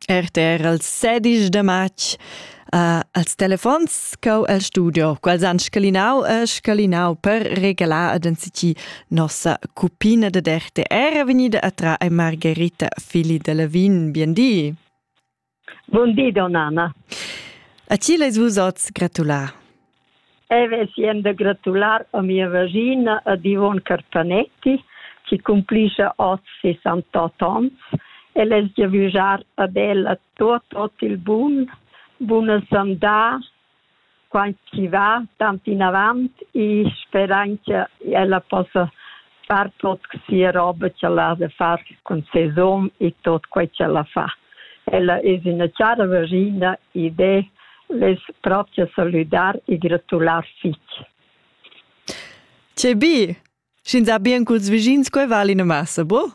RTR al sedisch da matg uh, als telefons cau el studio, quals han scalinau e scalinau per regalar ad anzici nossa cupina da RTR venida a tra e Margherita Fili de Levin. Bien di! Bon di, donnana. A ti leis vus oz gratular? E vesien da gratular a mia vagina ad Ivon Carpanetti, che cumplisce oz 68 ans, e les giavüjar ad ella tot, tot il bun, buna sandà, quant chi va tant inavant e sperain cha ella possa far tot sia roba ch'ella ha da far cun ses hom e tot quai ch'ella fa. Ella es üna chara vaschina ed eu vess pront da salüdar e gratular fich. Che bi! Sch'ins ha bien culs vischins, quai vala ina massa, boh?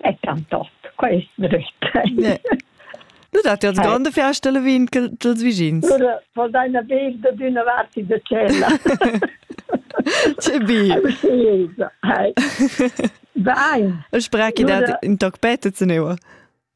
è tantot, quai è drüt. Du dat ja grande Feste le vin dels vicins. Vor deiner Wege d'una vart de cella. Che bi. Wein. Ich spreche dat in toc pete zu neua.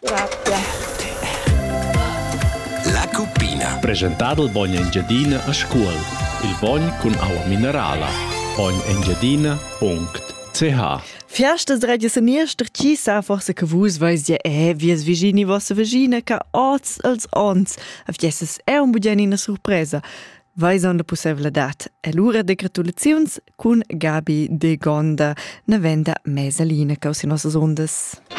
Grazie. La cuppina. Presentado il bogno Engiadina a scuol. Il bogn con aua minerala. Bognengiadina.ch Fiastas radio seniester chi sa forse che vus veis dir eh vies vigini vossa vagina che oz als ons a fiesas è un bugiani una surpresa vais on la possibilità. E lura de gratulaziuns cun Gabi de Gonda, na venda mesalina causi nossas ondas.